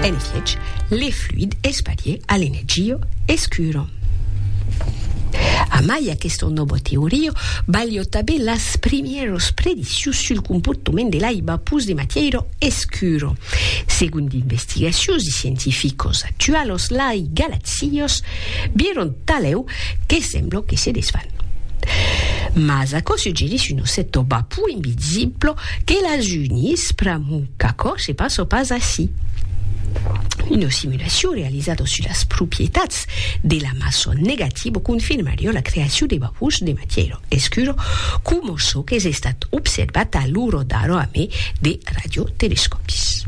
En efiech, le fluid es parier a l'energio escuro. Amai aquesta nòva teoria, balhò tabé las primièros prediccions sul comportament de l'aiba pus de matièira escuro. Segon d'investigacions de scientificos actualos lai galaxios vieron talèu que sembla que se desfan. Mas aquò suggerís un ossèto bapou invisible Que l'ajunís pr'amor qu'aquò se passa pas ací. Una simulacion realizada sus las propietats de la maçon negativa confirmariá la creacion de vapors de matièra escura coma çò qu'es estat observat a l'ora d'ara a mai de radiotelescòpis.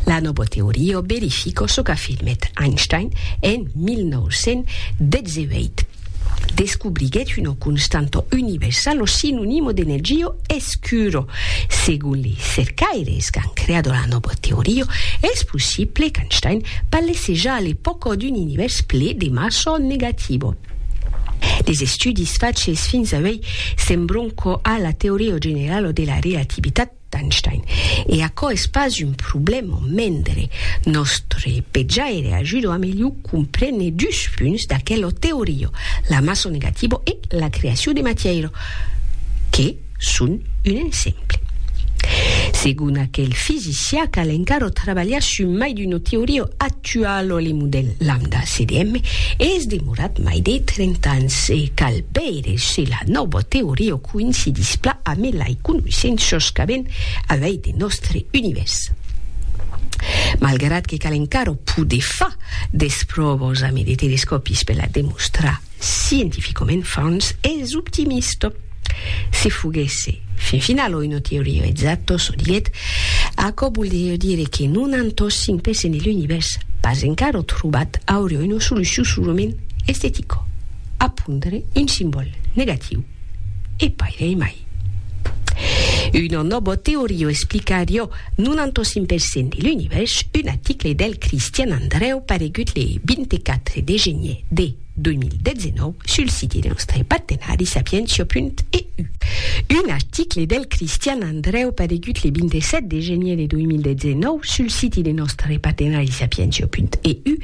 La nòva teoria verifica çò qu'afirmèt Einstein en 1918. Descubriguèt una constanta universala o sinonimo de nel gio escuro. Segon li cercaires qu'an creado la nòva teoria, es possible qu'Einstein parlasse ja a l'epòca d'un univèrs ple de massa negativa. Les estudis faches fins avei sembron quò a la teoria generala de la relativitat, d'Einstein. E aquò es pas un problèma mendre nòstre pejaire ajuda a melhor comprene dus punts d'aquela teoria, la massa negativa e la creacion de matièira, que son un exemple. Segon aquel fisicià cal encara trabalhar sus mai d'una teoria Tua lo lemu del lambda CDM es demorat mai de 30 ans e cal veire se la nòva teoria coïncidís pla ame lai conoissenças qu'avèn avei de nòstre univèrs. Malgrat que cal encara poder far des pròvas ame de telescòpis per la demostrar, Scientificament fons es optimista. Se foguèsse fin final oi no teoririzat tot çò dilet, aquò voldrieu dire que non an tot 5 pèces de l'univèrs pas encara trobat aurioi una solucion solament estetica, a pondre un simbòl negatiu. E pairei mai. Una nòbo teoria o explicarió 95 per cent de l'univèrs, un aticle del Cristian Andrèu paregut le 24 de genier de 2019 sul site de nòstre partenari sapientia.eu. Un aticle del Cristian Andrèu paregut le 27 de genier de 2019 sul site de nòstre partenari sapientia.eu.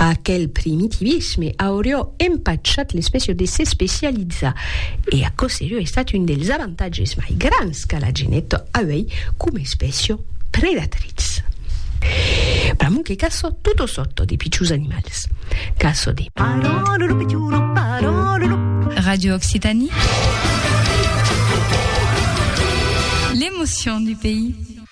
Aquel primitivisme aurió empachat l'especiò de s'especializar, e aquò serió estat un dels avantatges mai grans qu'a la genet auei coma especiò predatritz. Pr'amor que caçò tota sòrta de pichons animals. Caçò de. Radio Occitanie, l'emotion du pays.